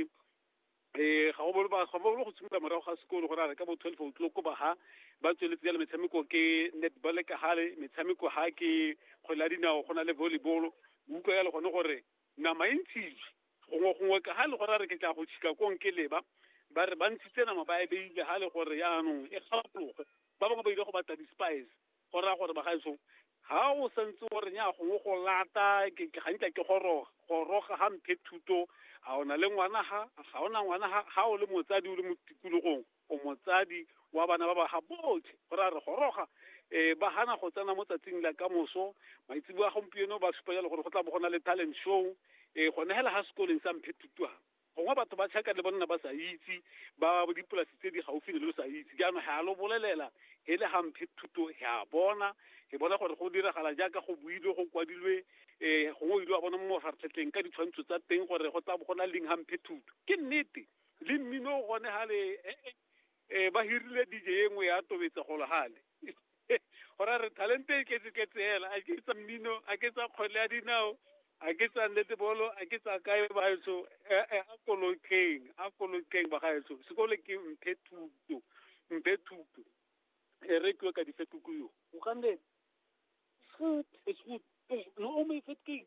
um ga go bolo ga bolo go simolola morago ga sekolo go rare ka bo twelve o'clock ko baga ba tsweletse jalo metshameko ke netball ka gale metshameko ga ke kgwele ya dinao go na le volleyball utlwa ya le gone gore nama e ntshitswe gongwe gongwe ka ga le gore a re ke tla go tšhika kong ke leba ba re ba ntshitse nama ba e beile ga le gore yaanong e gapologe ba bangwe ba ile go batla di-spice go raya gore bagaetsong ga o santse o renya gongwe go lata gantla ke goroga goroga ga mphe thuto ga o na le ngwana ga ga o na ngwana ga o le motsadi o le mo tikologong o motsadi wa bana ba baga botlhe go ra re goroga um ba gana go tsena mo tsatsing la ka moso maitsebo a gompieno ba supa jalo gore go tla bo go na le talent show um gone fela ga sekoleng sa mphe thutwang gongwe batho ba tšhaka le bonna ba sa itse ba dipolasi tse di gaufi le lo sa itse jaanong ga lo bolelela e le gamphe thuto ga bona ke bona gore go diragala jaaka go builwe go kwadilwe um gongwe ile wa bona mo mafaratlhatlheng ka ditshwantsho tsa teng gore go tla go na leng gamphe thuto ke nnete le mmino o gone ga le eh ba hirile DJ e nngwe ya tobetsa go lehale gora re talente e tletse tletse hela a ke tsa mmino a ke tsa kgwele ya dinao a ke tsa netebolo a ke tsa kae bagaetso eh, eh, a kolokeng a kolokeng bagaetso sekolo ke mphe thuto mphe thuto e re tlo ka difetuku yo o ka nne food is food no o me fetke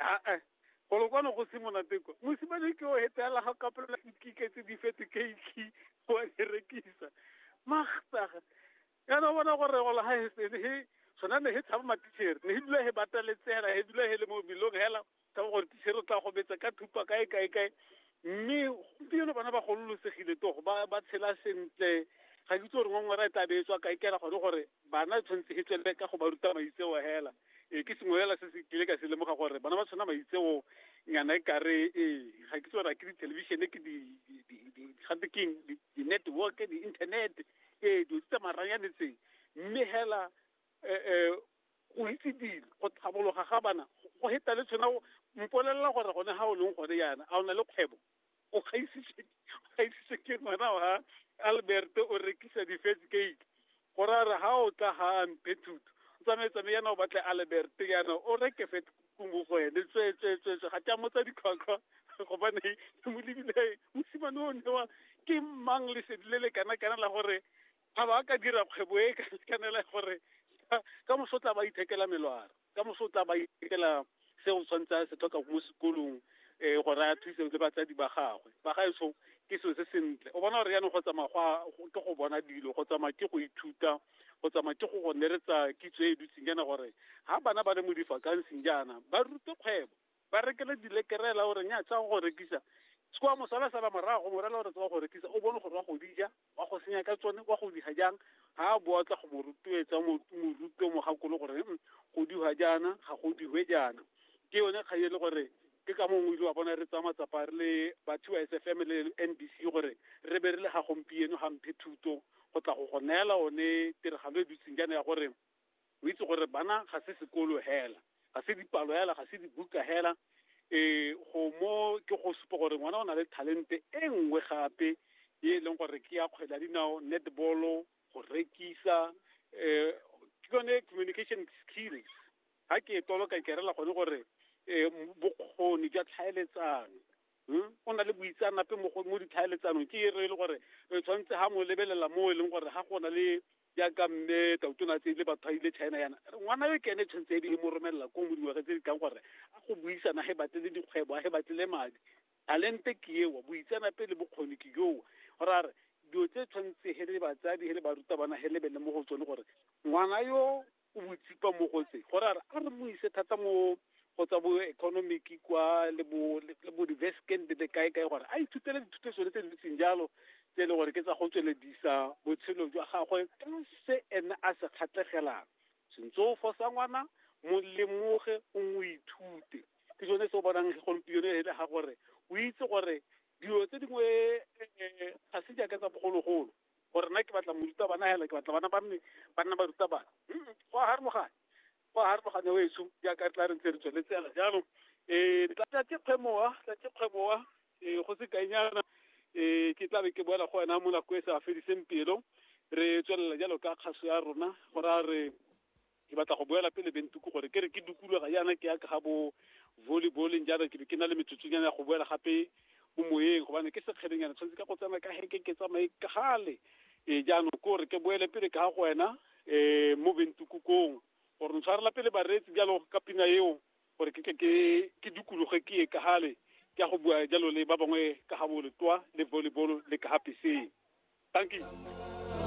aa golo kwano go se monate kwa mosimane ke o hetelela ga kapelela ikike tse di fete keiki go a di rekisa magtaga yana bona gore golo ga he se he sona ne he tshaba matichere ne he dula he bata letsela he dula he le mo bilong hela tshaba gore tichere o tla go betsa ka thupa kae kae kae mme gompieno bana ba gololosegile togo ba ba tshela sentle ga ke itse gore ngongwera e tla be e tswa kae kela gone gore bana tshwanetse e tswelele ka go ba ruta maitseo hela e ke sengwe hela se se kile ka se lemoga gore bana ba tshwana maitseo nyana e kare ee ga ke itse gore a ke dithelebishene ke gate keng di-network di-internet ee dilo tse tsa maranyane tseng mme hela um go itse dilo go tlhabologa ga bana go heta le tshwana mpolelela gore gone ga o leng gone yana a o na le kgwebo o gaisitse ke ngwana wa albert o rekisa di-first gate go ra re ga o tla ga mphe thuto tsamaye-tsamaye yana o batle albert yana o reke fet kumo go ene tswetswetswetswe ga tša motsa ditlhwatlhwa gobane ke mo lebile mosimane o newa ke mang lesedi le le kana-kana la gore a ba ka dira kgwebo e ka sikanela gore ka moso tla ba ithekela melwaro ka moso tla ba ithekela se o tshwanetse a se tlhoka mo sekolong um gore a thuse le batsadi ba gagwe ba gaetsho ke selo se sentle o bona gore yaanong go tsamaya go ke go bona dilo go tsamaya ke go ithuta go tsamaya ke go go neretsa kitso e dutseng jaana gore ga bana ba le mo difakansing jaana ba rute kgwebo ba rekele dilekerela gore nya tsa go rekisa se kwa mosala sala morago morela gore tsa go rekisa o bone gore wa go dija wa go senya ka tsone wa go diha jang ga a boa tla go mo rotloetsa moruto mogakolo gore mm, go diwa jaana ga go diwe jaana ke yone kgang e le gore ke ka mongwe ile wa bona re tsaya matsapa re le batho ba sfm le n b c gore re be re le ga gompieno ga mphe thuto go tla go go neela one tiragalo e dutseng jaana ya gore o itse gore bana ga se sekolo hela ga se dipalo hela ga se dibuka hela um go mo ke go supa gore ngwana o na le talente e nngwe gape e e leng gore ke ya kgwele ya dinao netball go rekisa um ke yone communication skills ga ke e toloka ke rela gone gore um bokgoni jwa tlhaeletsano hmm? o na le boitsanape mo ditlhaeletsanong ke e re e le gore re tshwanetse ga mo lebelela mo e leng gore ga go na le jaaka mme tautona a tseile batho a ile china yana ngwana yo ke ene tshwanetse e be e mo romelela ko mo dingwaga tse di tlang gore a go buisana ge batlele dikgwebo a ge batlele madi talente ke ewa boitseanape le bokgoni ke yoo gore a re dilo tse tshwanetse he le batsadi he le barutabana he lebele mo go tsone gore ngwana yo o botsipa mo go tse gore a re mo ise thata mo go tsa bo economic kwa le bo le bo reverse candidate kae kae gore a ithutele dithuto tsone tse dintseng jalo tse e leng gore ke tsa go tsweledisa botshelo jwa gagwe ka se ene a se kgatlhegelang sentse o fosa ngwana mo lemoge o mo ithute ke sone se o bonang gompieno e le ga gore o itse gore dilo tse dingwe eh, eh, ga se jaaka tsa bogologolo gore nna ke batla morutabana hela ke batla bana ba mme ba nna barutabana go a harologane go a harologane o eso jaaka re tla re ntse re tsweletse yana jaanong um tlatsa ke kgwemoa tlatse kgweboa um go se kainyana um ke tla be ke boela go wena mo nako e sa fediseng pelo re tswelela jalo ka kgaso ya rona go raya re ke batla go boela pele bentuku gore ke re ke dukuluga yana ke ya ka ga bo volleyballing jaana ke be ke na le metsotsonyana ya go boela gape mo moyeng gobane ke sekgelenyana tshwanetse ka go tsena ka heke ke tsamaye ka gale e jaanong ko re ke boele pele ka ga go wena um mo bentukukong gore ntshwarela pele bareetsi jalo ka pina eo gore ke ke ke dukuluge ke ye ka gale ke ya go bua jalo le ba bangwe ka ga boletwa le volleyball le ka ga peseng thank you